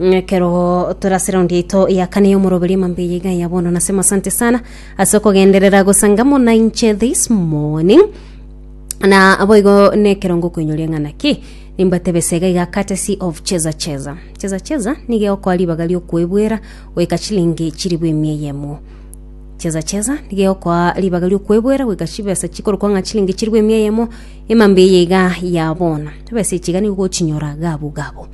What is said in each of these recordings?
Ekero tore ase raundi yaito ya kane y'omoroberi emambia yaiga ya bono nasema asante sana ase okogenderera gosangamo na inche this morning na boigo nekerongo koinyoria ng'a naki nimbatebe sega iga courtesy of cheza cheza cheza cheza niga egokoa ribaga riokwebwera goika chilingi chiribu emia eyemo cheza cheza niga egokoa ribaga riokwebwera goika chibesa chikorokwa ng'a chilingi chiribu emia eyemo emambia eye iga ya bono chibesa echi iga nigo ogochinyora gabu gabu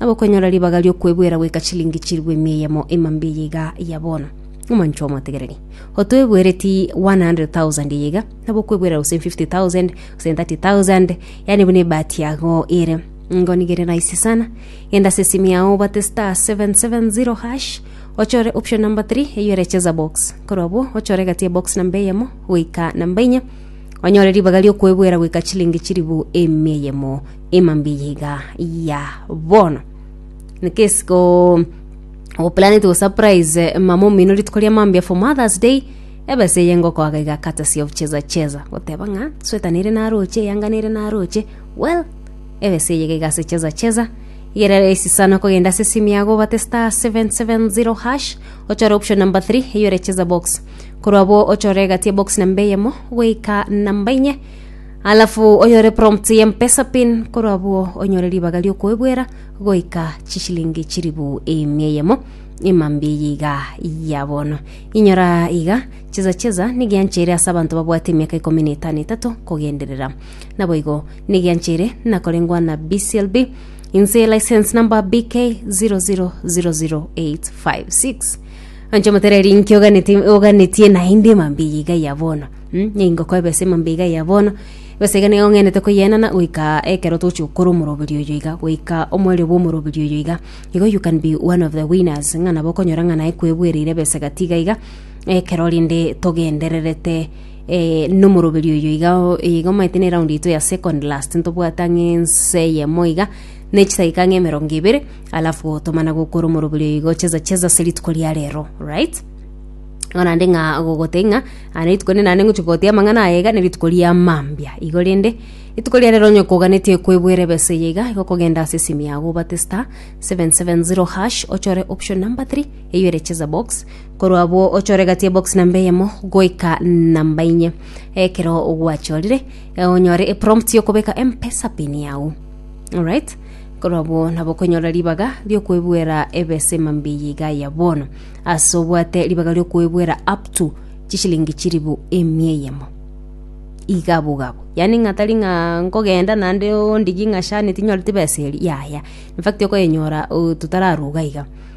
nabo okonyora ribaga ri'okwebuera goika chilingi chilifu emia eyemo emambi eye iga ya bono. Omonchwa omotegereri, otwebuereti 100,000 eye iga, nabo okwebuera gose 50,000 gose 30,000, yaani buna ebahati yago ere. Ingo nigo ere rahisi sana, genda ase esimi yao obate star 770 hash, ochore option number 3 eyio ere cheza box. Korwa abwo ochore egati ya box namba eyemo goika namba inya, Onyore ribaga ri'okwebuera goika chilingi chiribu emia eyemo ema mbiya iga ya bono nikesiko oplanete go surprise mama omino rituko ria mambia for mothers day ebesa eye ngokoaga iga courtesy of cheza cheza goteba ng'a sweta nere naroche eyanga nere naroche well ebesa eye iga ase cheza cheza igere rahisi sana okogenda ase esimu yago obate star 770 hash ochore option number 3 eyore cheza box korwa abwo ochore egati ya box namba eyemo goika namba inye alafu onyore prompt ya mpesa pin korwa abwo onyore ribaga riokoebwera goika chishilingi chiribu emia eyemo emambi eye iga ya bono inyora iga cheza cheza nigianchere ase abanto babwate emiaka ikomi na etano etato kogenderera naboigo nigianchere nakorengwa na bclb inse license number bk 0000856 Anche motereri inki oganeti- oganetie naende emambia iga ya bono? Hm, nigo koeba ase emambia iga ya bono, besa iga nigo ong'enete koyeenana goika ekero toche gokora omoroberi oyo iga, goika omoerio bwa omoroberi oyo iga. Igo you can be one of the winners, ng'a nabo okonyora ng'a naye kwebuereire ebesa gati iga iga, ekero rende togendererete eh nomoroberi oyo iga o- iga omanyete na eround yaito ya second last, ntobwate ang'e ense eyemo iga, ne chidakika ang'e emerongo ebere, alafu gotomana gokora omoroberio igo cheza cheza ase rituko ria rero right igo naende ng'a gogotebia ng'a "Ah, rituko rinde naende ngochia gogotia amang'ana aya iga nerituko ria mambia igo rende rituko ria rero onye koganetie kwebwera ebesa eye iga igo kogenda ase esimu yago obate star 770 hash ochore option number 3 eywo ere cheza box korwa abwo ochore gati ebox namba eyemo goika namba inye ekero gwachorire eh, onyore eprompt yokobeka mpesa pin yago alright Korw'abwo nabo okonyora ribaga ri'okwebuera ebesima mbiya iga ya bono, ase obwate ribaga ri'okwebuera up to chishilingi chilifu emia eyemo. Iga abwo iga abwo. Yaani ng'a tari ng'a nkogenda naende ondigie ng'a shani tinyoreti besa eria, yaya. Infact okoyenyora oh, totararuga iga.